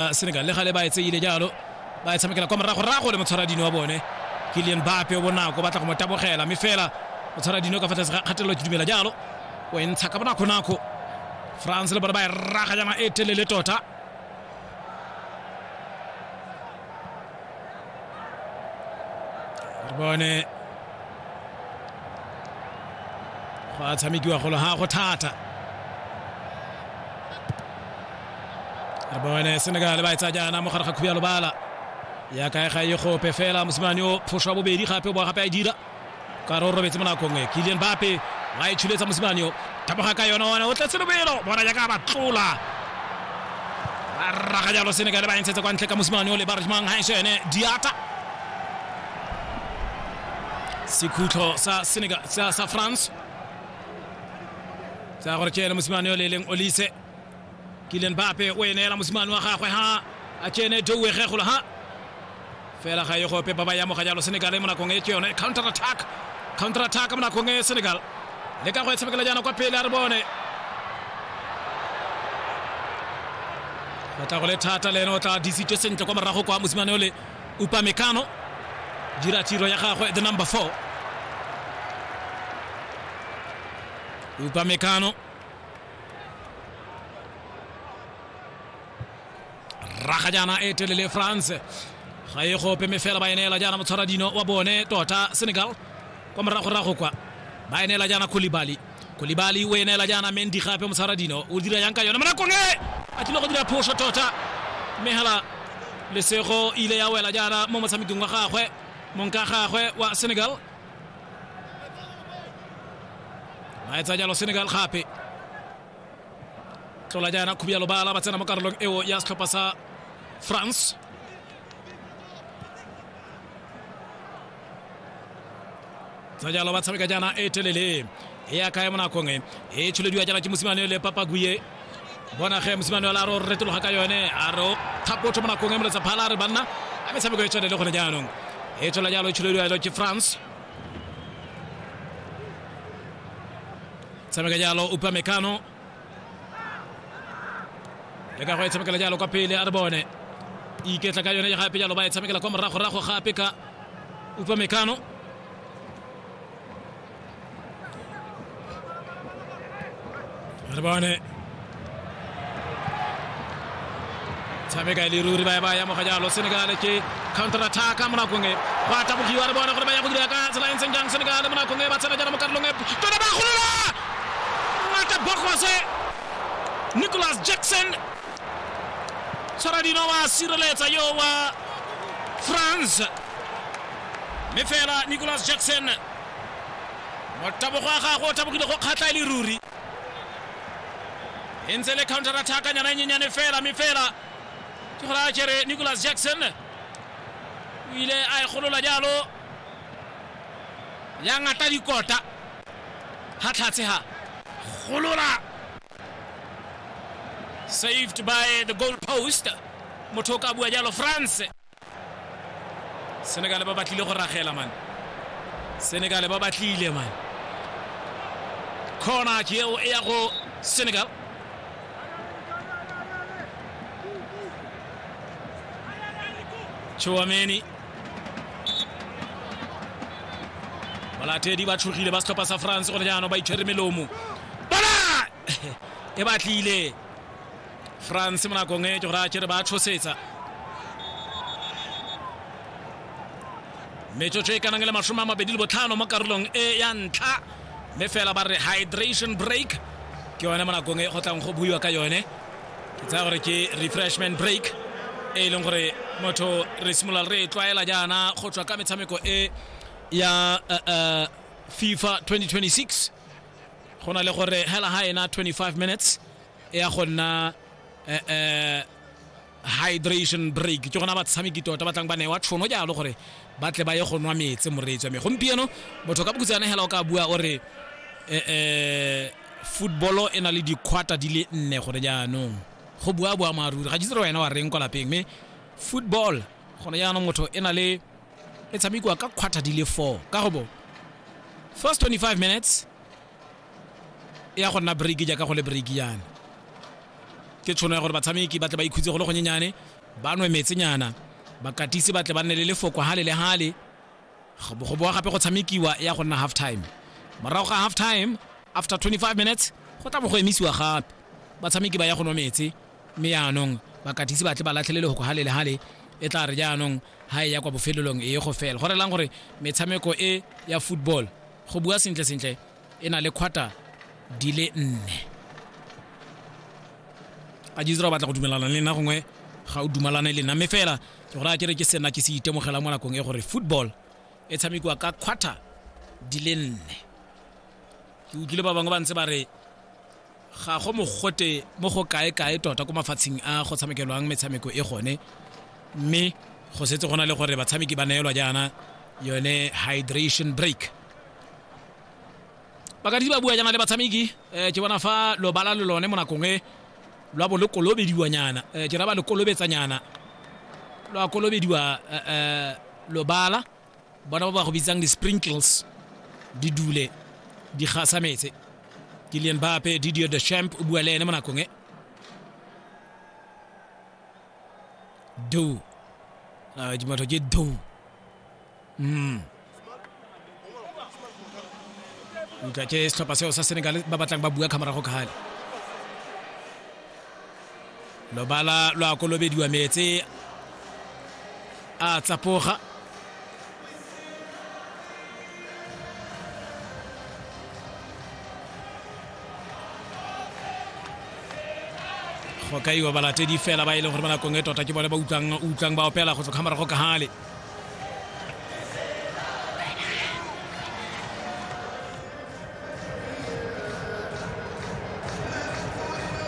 uh, senegal le gale ba e tseile jalo ba e tshamekela kwa morago rago le motshwara dino wa bone ke lien bape o bonako batla go mo tabogela mme fela o tshwara dino ka fa tlase ga kgatelelo ke dumela jalo o e ntsha ka bonako-nako france le bone ba e raga jana e telele tota re bone go a tshamekiwa golo ga go thata re bone senegal ba e tsa jaana mo gare ga khubi ya lobala ya kae ga e gope fela mosimane o phoso wa bobedi gape o boa gape a e dira ka re o robetse mo nakong e kilian bape wa e tshuletsa mosimane o taboga ka yone one o tletse lobelo bona jaaka ba tlola ba raga jalo senegale ba e ntshetse kwa ntle ka mosimane o le ba remang ga ese ene diata sekhutlho sa senegal sa, sa france tsa gore ke ene mosimane o le e leng olise Kylian Mbappe o e neela mosimane wa gagwe ha a tsene Douwe Kgegolo ha fela ga e gope ba ba ya moga jalo Senegal mo nakong e ke yone counter attack counter attack mo nakong e Senegal le ka go e tshamekela jaana kwa pele a re bone go tla go le thata le ene o tla disitse sentle kwa morago kwa mosimane ole Upamecano dira tiro ya gagwe the number 4 Upamecano raga jaana e telele france ga e gope me fela ba e neela jaana motshwara dino wa bone tota senegal kwa moragorago kwa ba e neela jaana kolibali kolibali o e neela jaana mendi gape motshwara dino o dira yang ka yone monakong e a tlile go dira phoso tota mme hela lesego ile ya wela jaana mo motshamekong wa gagwe monka gagwe wa senegal ba etsa jalo senegal gape tlola jaana khubi ya lobala ba tsena mo karolong eo ya setlhopha sa france tsa jalo ba tshameka jaana e telele e a kaya mo nakong e e tsholediwa jaana ke mosimane le papaguye bona ge mosimane ola a re o retologa ka yone a re o thapotho mo nakong e moletsa phala a re banna a metshameko e tshwane le gone jaanong e tshola jalo e tsholediwa jalo ke france tshameka jalo upa mekano le ka go e tshamekela jalo kwa pele a re bone iketla ka yone gape jalo ba e tshamekela kwa moragorago gape ka upa mekano Rebane. Tshameka le ruri ba ba ya mo ga jalo Senegal ke counter attack mo nakong e. Ba tabogiwa re bona gore ba ya go dira ka tsela e ntseng jang Senegal mo nakong e ba tsena jana mo karolong e. Tona ba golola. Ngata Bogose. Nicholas Jackson. Tshwaradino wa sireletsa yo wa France. Mme fela Nicholas Jackson motabogo wa gagwe o tabogile go kgatlha e le ruri e ntse le counter attack nyana e nyenyane fela mme fela ke gore a kere nicholas jackson o ile a e golola jalo ya ngata dikota ga tlhatshe ga golola saved by the goal post motho o ka bua jalo france senegale ba batlile go ragela mane senegale ba batlile mane corner ke eo e ya go senegal Chouameni balatedi ba tshogile ba setlhopha sa france gone jaanong ba itshwere melomo bona e batlile france mo nakong e ke gore a kere ba tshosetsa metsotso e kanang le masome a mabedi le botlhano mo karolong e ya ntlha mme fela ba re hydration break ke yone mo nakong e go tlang go buiwa ka yone ke tsaya gore ke refreshment break e e leng gore motho re simolola re e tlwaela jaana go tswa ka metshameko e ya uh, uh, fifa 2026 go na le gore hela ha ena 25 minutes e ya go nna um hydration break ke gona batshameki tota ba tlang ba newa tšhono jalo gore ba tle ba ye go nwa metse moreetsi wa me gompieno motho ka bokutsana hela o ka bua o re um footballo e na le dikhwata di le nne gone jaanong go bua bua maaruri ga jitsere wena wa reng kwa lapeng mme football gone jaanong motho e na le e tshamekiwa ka khwata di le four ka go bo first 25 minutes ya go nna break jaaka go le break yana ke tshono ya gore batshameki ba tle ba ikhutse go le gonyenyane ba nwe metsenyana bakatisi ba tle ba nne le lefoko hale le hale go boa gape go tshamekiwa ya go nna half time morago ga half time after 25 minutes go tla bo go emisiwa gape batshameki ba ya go nwa metse mme yaanong bakatisi ba tle ba latlhele lefoko hale le hale e tla re jaanong ha e ya kwa bofelelong e ye go fela go relang gore metshameko e ya football go bua sentle sentle e na le quarter di le nne a jizra o batla go dumelana le nna gongwe ga o dumalane le nna mme fela ke gore a kere ke sena ke se itemogela mo nakong e gore football e tshamekiwa ka quarter di le nne ke utlwile ba bangwe ba ntse ba re ga go mogote mo go kae-kae tota ko mafatsheng a go tshamekelwang metshameko e gone mme go setse go na le gore batshameki ba neelwa jaana yone hydration break bakadisi ba bua jaana le batshameki um ke bona fa lobala le lone mo nakong e lwa bo le kolobediwanyana um ke ra ba le kolobetsanyana lwa kolobediwa um lobala bona ba ba go bitsang di-sprinkles di dule di gasa metse kilian bape didio de champ o bua le ene mo nakong e do a dimatho ke do mm utlwa ke setlhopha seo sa senegal ba batlang ba bua kgamorago kgale lobala lwa kolobediwa metse a tsapoga go kaiwa balatedi fela ba e leng gore ba nakong e tota ke bone ba utlwang ba opela go tswa kgamara go kahale